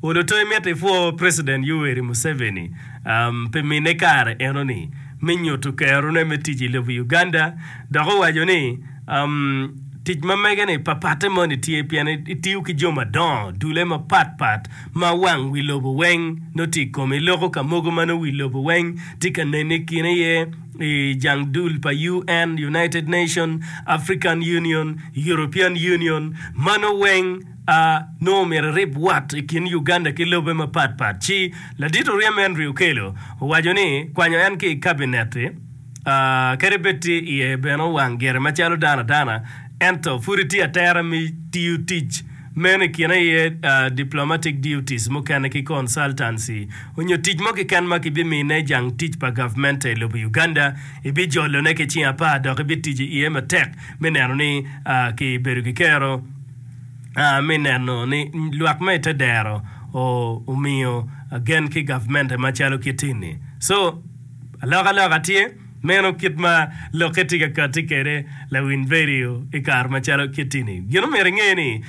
Oluto imito ipwo President Yoweri Museveni pi mine kare enoni me nyuto kerone me tic i lobo Uganda dok owaco ni tic ma mege-ni papatte moni tye pien itiyo ki jo madongo dule mapat pat ma wang wi lobo weng nongo tye i kome. Iloko ka mogo ma nongo wi lobo weng tye ka nene i kine iye i jang dul pa UN, United Nations, African Union, European Union, mano weng a nongo myero erib wat i kin Uganda ki lobe mapat pat ci ladit oryem Henry Okello owaco ni kwanyo en ki i kabinet-ti a kadi bed tye iye bene owang gire macalo dano adana ento pudi tye atera me tiyo tic meno i kine aye a diplomatic duties mukene ki consultancy onyo tic mo keken ma kibimine i jang tic pa gavment i lobo Uganda ibijolone ki cing apar dok ibitico iye matek me neno ni a kibedo ki kero me neno ni lwak ma i te dero omiyo gen ki gavmente macalo kiti-ni. So, alokaloka tye, meno kit ma lokke tye ka kati kwede lawiny redio i kare macalo kiti-ni. Gin ma omyero inge ni,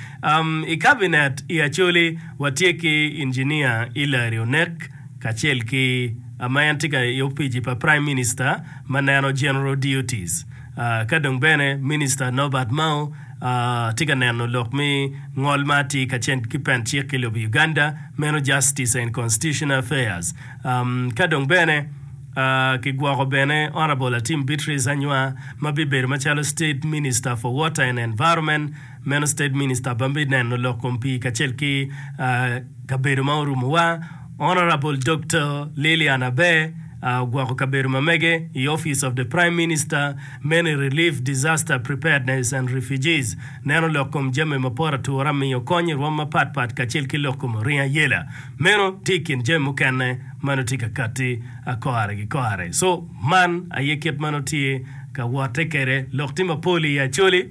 i kabinet i Acholi watye ki Injinia Hillary Onek kacel ki ma en tye i opici pa Prime Minister ma neno General Duties, ka dong bene Minista Norbert Mao, Atye ka neno lok me ngol ma atye kacen ki Pent Cik i lobo Uganda, meno Justice and Constitutional Affairs. Ka dong bene kigwoko bene Honourable Atim Beatrice Anywa ma bibedo macalo State Minister for Water and Environment, meno State Minister ma bineno lok kom pii kacel ki kabedo ma orumowa. Honourable Doktor Lilian Aber ogwoko kabedo ma mege i Office of the Prime Minister many Relief Disaster Preparedness and Refugees neno lok kom jami mapot atura miyo kony i rwom mapat pat kacel ki lok kom oringo ayela meno tye i kin jami mukene ma nongo tye ka katti kare ki kare so man aye kit ma nongo tye ka wotte kwede lok tye mapol i Acholi.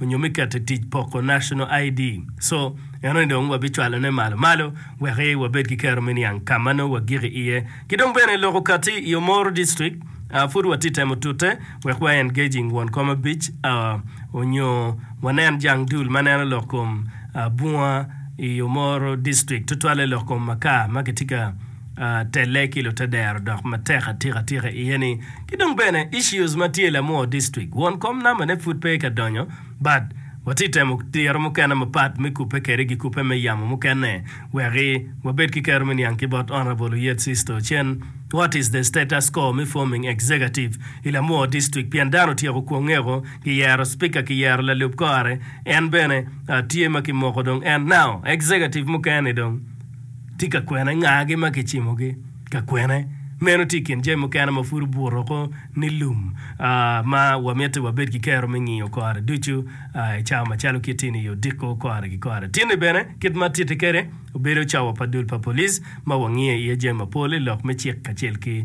onyo me keto i tic poko National ID, so enoni dong wabicwalo ne malo malo wek i wabed ki kero me niang ka ma nongo wagik i iye. Ki dong bene loko kati i Omoro District, a pud watye temo tute wek wa engaging won kom abic a onyo wanen jang dul ma neno lok kom a bunga i Omoro District tutwalle lok kom makar ma kitye ka telle ki lutedero dok matek atika tika iye ni ki dong bene issues ma tye lamor district won kom number ne pud pe ka donyo but watye temo diro mukene mapat me kupe kede gi kupe me yamo mukene weki wabed ki kero me niang ki bot honourable Oyet Sisto Ocen what is the status co me forming executive I lamor district pien dano otyeko kwongeko ki yero speaker ki yero lalub kore en bene tye ma ki moko dong and now executive mukene dong tye ka kwene ngagi ma kicimogi ka kwene. Meno tye i kin jami mukene ma pud obuto ko ni lum ma wamito ni wabed ki kero me ngiyo kore ducu i cawa macalo kit ini i odiko kore ki kore. Tinni bene, kit ma atitti kwede obedo cawa pa dul pa police ma wangiyo iye jami mapol i lok me cik kacel ki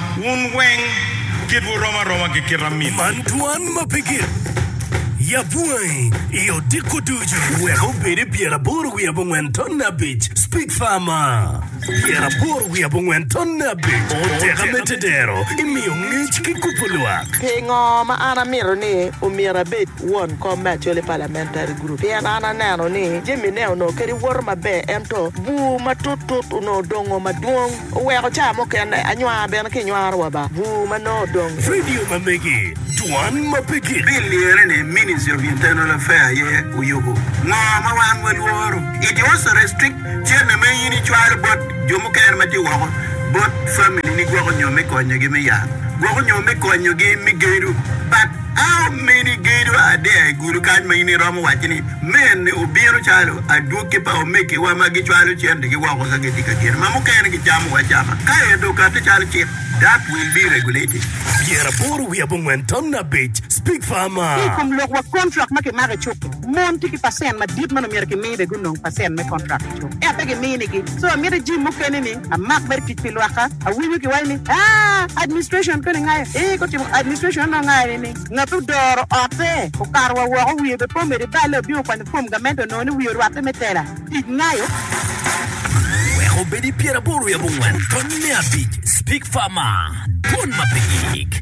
Wun weng kitwu rom aroma ki kit amin. Man twan ma pe gik. Yab wangi i odiko ducu. Wek obed i pyer aboro wiye abongwen tonne abic, Speak Farmer. Pyer aboro wiye abongwen tonne abic, O teka me tedero, imiyo ngec ki kubo lwak. Pingo ma an amito ni omyero abed won kom me Acholi Parliamentary Group? Pien an aneno ni jamine onongo kadi woto maber ento bur matut tut onongo dongo madwong. Oweko caa mukene anywaa bene ki nywaro wa ba bur ma nongo odong. Vidio ma megi, Dwan ma pe gik. Pi lyere ni Ministry of Internal Affair aye oyubu ngo ma wan wa lworo, it also restrict cene ma in i cwalo bot jo mukene ma tye woko bot family ni gwoko nyo me konyo gi me yat gwoko nyo me konyo gi me gedo but. A Omeni gedo adea i gudo kany ma in iromo wacci ni, 'Meni obino calo adwogi pa omegiwa ma gicwalo centegi woko ka gitye ka geno ma mukene gicamo acama, ka ento okatte calo cik, that will be regulated. Pyeraboro wiye abongwen tamna abic, Speak farmer. Ki i kom lok wa kontrak ma kimako i cuk-ki, mon tye ki pacent madit ma onongo myero kimi bene gunong pacent me kontrak. Ento pe giminigi. So amito i gym mukene ni amak mere tic pi lwakka. Awinyo kiwaco ni aah administration koni ngayo eeh gutimo administration anongo ngayo ni ni ngat ma odoro ote okato wa woko wiye be po medo ibale obino okwanyo form gamente onongo ni wiye orwatte me tela tic ngayo. Wek obed i pyeraboro yabo ngwen, tony me abic, Speak Farmer, dwon ma pe yik.